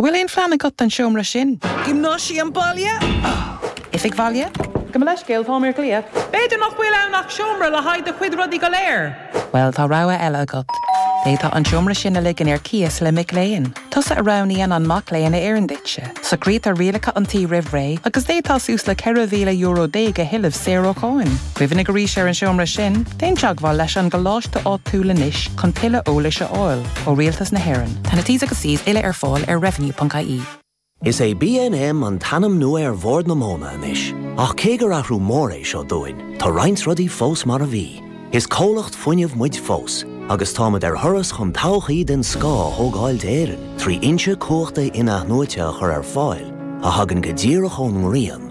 An bhfuil aon phlean agat don seomra sin? Giomnáisiam baile? Oifig bhaile? Gabh mo leithscéal, táim ar glaoch. B'fhéidir nach bhfuil ann ach seomra le haghaidh do chuid rudaí go léir. Bhuel, tá rogha eile agat. D'fhéadfá an seomra sin a ligean ar cíos le mic léinn. Tusa a roghnaíonn an mac léinn a oireann duitse. Socraítear rialacha an tí roimh ré agus d'fhéadfá suas le €4,000 déag a thuilleamh saor ó cháin. Cuimhnigh arís ar an seomra sin, déan teagmháil leis an gcoláiste áitiúil anois chun tuilleadh eolais a fháil ó Rialtas na hÉireann. Tá na T's agus C's uile ar fáil ar revenue.ie. Is é BNM an t-ainm nua ar Bhord na Móna anois, ach cé gur athrú mór é seo dúinn, tá roinnt rudaí fós mar a bhí. Is comhlacht fuinnimh muid fós, agus táimid ar thuras chun todhchaí den scoth a thógáil d'Éirinn trí fhoinse cumhachta in-athnuaite a chur ar fáil a thagann go díreach ón ngrian,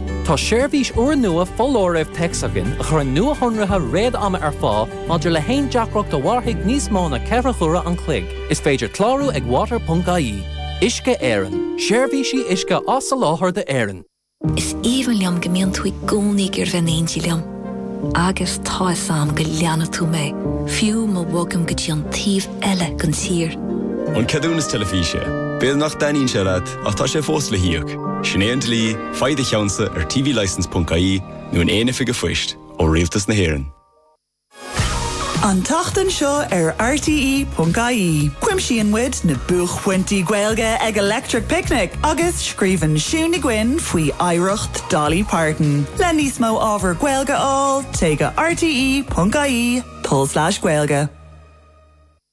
Tá seirbhís úrnua foláirimh téacs againn a chuireann nuashonruithe réad-ama ar fáil maidir le haon deacracht a mhairfidh níos mó ná ceithre huaire an chloig. Is féidir clárú ag water.ie. Uisce Éireann, seirbhísí uisce á soláthar d'Éirinn. Is aoibhinn liom go mbíonn tú i gcónaí ag iarraidh bheith in éindí liom. Agus tá fhios a'm go leanfaidh tú mé, fiú má bhogaim go dtí an taobh eile den tír. An ceadúnas teilifíse. B'fhéidir nach dtaitníonn sé leat. Ach tá sé fós le híoc. Sin é an dlí, faigh do cheannsa ar tvlicence ponc ie nó in aon oifig an phoist, ó Rialtas na hÉireann. An tseachtain seo ar RTÉ ponc ie, cuimsíonn muid na buaicphointí Gaeilge ag Electric Picnic agus scríobhann Siún Ní Dhuinn faoi oidhreacht Dolly Parton. Le níos mó ábhar Gaeilge a fháil, téigh go rte ponc ie, tulslais gaeilge.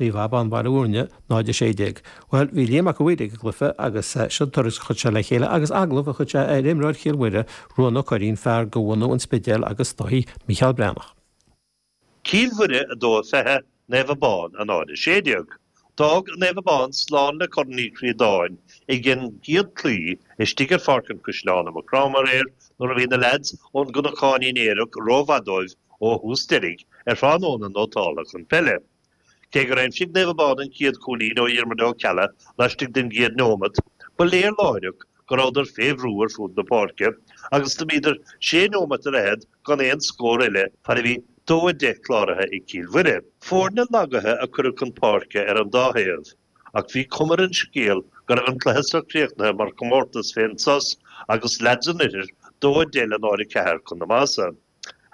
Naomh Abán Baile Mhúirne, 0 16. Bhuel, bhí Liam Mac a' Mhaoir ag an gcluiche agus seo tuairisc a chuir sé le chéile agus agallamh a chuir sé ar imreoir Chill Mhuire, Ruán Ó Curraoin, fear de bhunadh an Spidéil agus Dáithí Mícheál Breathnach. Cill Mhuire 2 20 Naomh Abán a 0 16. D'fhág Naomh Abán slán le Corn Uí Chríodáin ag an gcéad chlaí istigh ar Pháirc an Chaisleáin i Maigh Chromtha aréir nuair a bhí na leaids ón gCnocáinín aerach rómhaith dóibh ó thús deiridh ar thráthnóna nótálta chun peile Cé gur aimsigh Naomh Abán an chéad chúilín ó Dhiarmaid Ó Ceallaigh laistigh den gcéad nóimeat, ba léir láithreach go rabhadar fé bhrú ar fud na páirce agus do bhíodar sé nóimeat ar fhichid gan aon scór eile fad a bhí 2-10 cláraithe ag Cill Mhuire. Foirne lagaithe a cuireadh chun páirce ar an dá thaobh ach bhí cuma ar an scéal go raibh an cluiche so críochnaithe mar chomórtas fén sos agus leads an oirthir 2-10 le 0-4 chun a maitheasa.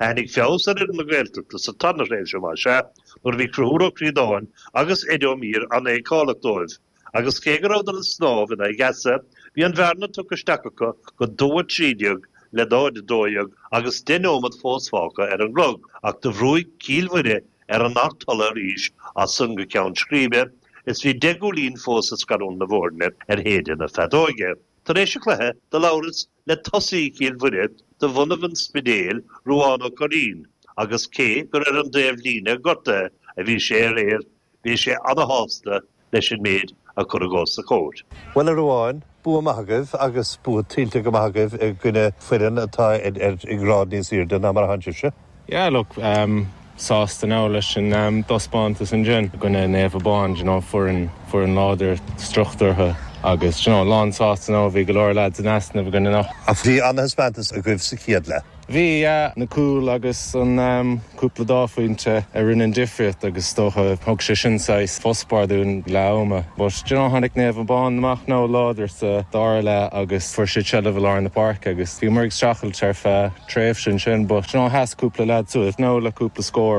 Tháinig feabhas ar fhoireann na Gaeltachta sa tarna tréimhse, más ea, nuair a bhí Conchúr Ó Críodáin agus Eddie Ó Mír an-fheiceálach dóibh, agus cé go rabhadar ag snámh in aghaidh easa, bhí an bhearna tugtha isteach acu go 2 13 le 0 12 agus 10 nóiméad fós fágtha ar an gclog, ach do bhrúigh Cill Mhuire ar an throttle arís as san go ceann scríbe is bhí deich gcúilín fós ag scarúint na bhfoirne ar shéideadh na feadóige. Tar éis an chluiche, do labhras le tosaí Chill Mhuire de bhunadh an Spidéil, Ruán Ó Curraoin, agus cé gur ar an dtaobhlíne gortaithe a bhí sé aréir, bhí sé ana-shásta leis an méid a cuireadh os a chomhair. Bhuel, a Ruáin, bua maith agaibh agus bua tuillte go maith agaibh i gcoinne foireann atá i ngrád níos aoirde ná mar a thánn sibhse. Yeah, look, um sásta now leis an um dtaispeántas ansin i gcoinne Naomh Abán, d'you know, foireann, foireann láidir, struchtúrtha agus d'you know, lán sásta now, bhí go leor lads in easnamh againn anocht. Bhí an-thaispeántas agaibh sa chéad leath. Bhí, yeah, na cúil agus an um cúpla dhá phointe a rinne an difríocht agus is dócha thug sé sin saghas fospár dúinn leath ama but d'you know, tháinig Naomh Abán amach now láidir sa dara leath agus fuair siad seilbh i lár na páirce agus, Bhíomar ag streachailt ar feadh tréimhse ansin, but d'you know, sheas cúpla leaid suas now le cúpla scór.